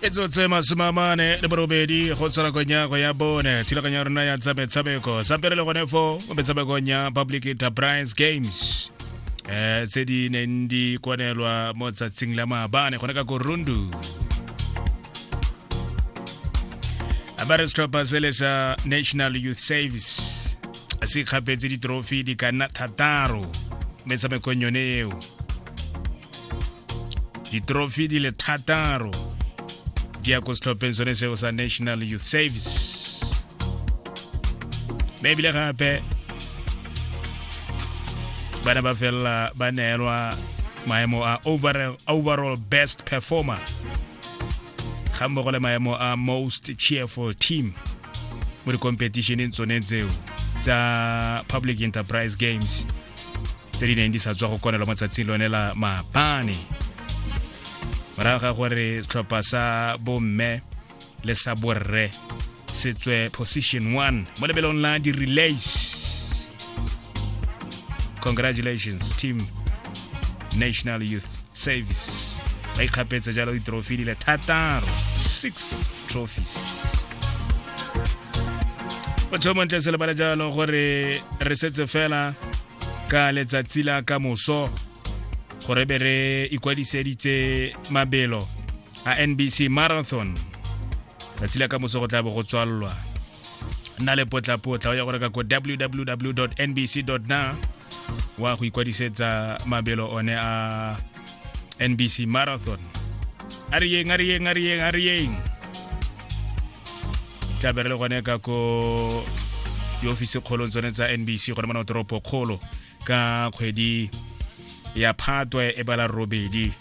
e tsotse masome a mane le borobedi go tshwara konyago ya bone thulaganyo ya rona ya tsa metshameko sa pele le gone fo mo metshamekong ya public enterprise games um tse di neng di kwanelwa mo tsatsing la maabane gone ka korundu a ba re setlhopha sele sa national youth service se kgapetse ditrofi di ka nna thataro metshamekong yone eo ditrofi di le thataro di ya ko setlhopheng sone seo sa national youth service mme ebile gape bana ba felela ba neelwa maemo a overall, overall best performer ga mmogo le maemo a most cheerful team mo dikompetitioneng tsone tseo tsa public enterprise games tse di neng di sa tswa go konelwa mo tsatsing lone la maabane morago ga gore setlhopha sa bomme le sa borre se tswe position one mo lebelong la di-relays congratulations team national youth service ba ikgapetse jalo ditrofi di le thataro six trophies o tshomontle se lebale jalo gore re setse fela ka letsatsi la ka moso gore be re ikwadiseditse mabelo a nbc marathon tsatsi la ka moso go tla bo go tswalelwa nna le potlapotla o ya go reka ko www nbc na wa go ikwadisetsa mabelo one a NBC Marathon a re yeng a re yeng a re yeng a re yeng tlabere le gone ka ko diofisi kgolong tsone tsa NBC gone mona toropo kgolo ka kgwedi ya phatwe e bala robedi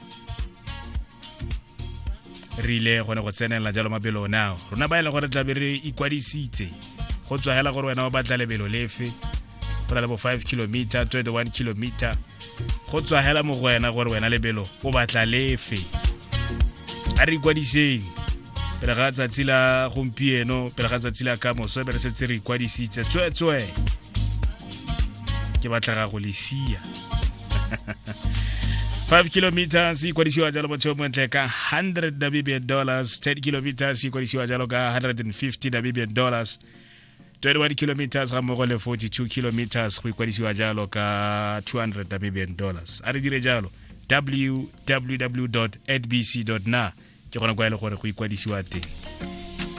re ile gone go tsenela jalo mabelo nao rona ba e leng gore tlabe re ikwadisitse go tswa hela gore wena o batla lebelo lefe go na le bo 5 kilometer 21 kilometer go tswa hela mo go wena gore wena lebelo o batla lefe a re ikwadiseng pele ga tsatsi la gompieno pele ga tsatsi la ka moso be re setse re ikwadisitse tsweetswe ke batlega go lesia 5 kilometers se ikwadisiwa jalo motho yo montle ka 100 namibian dollars 10 kilometers se ikwadisiwa jalo ka 150 namibian dollars 21 kilometers ga mmogo le 42 kilometers go ikwadisiwa jalo ka 200 namibian dollars a re dire jalo www adbc na ke gona kwa e le gore go ikwadisiwa teng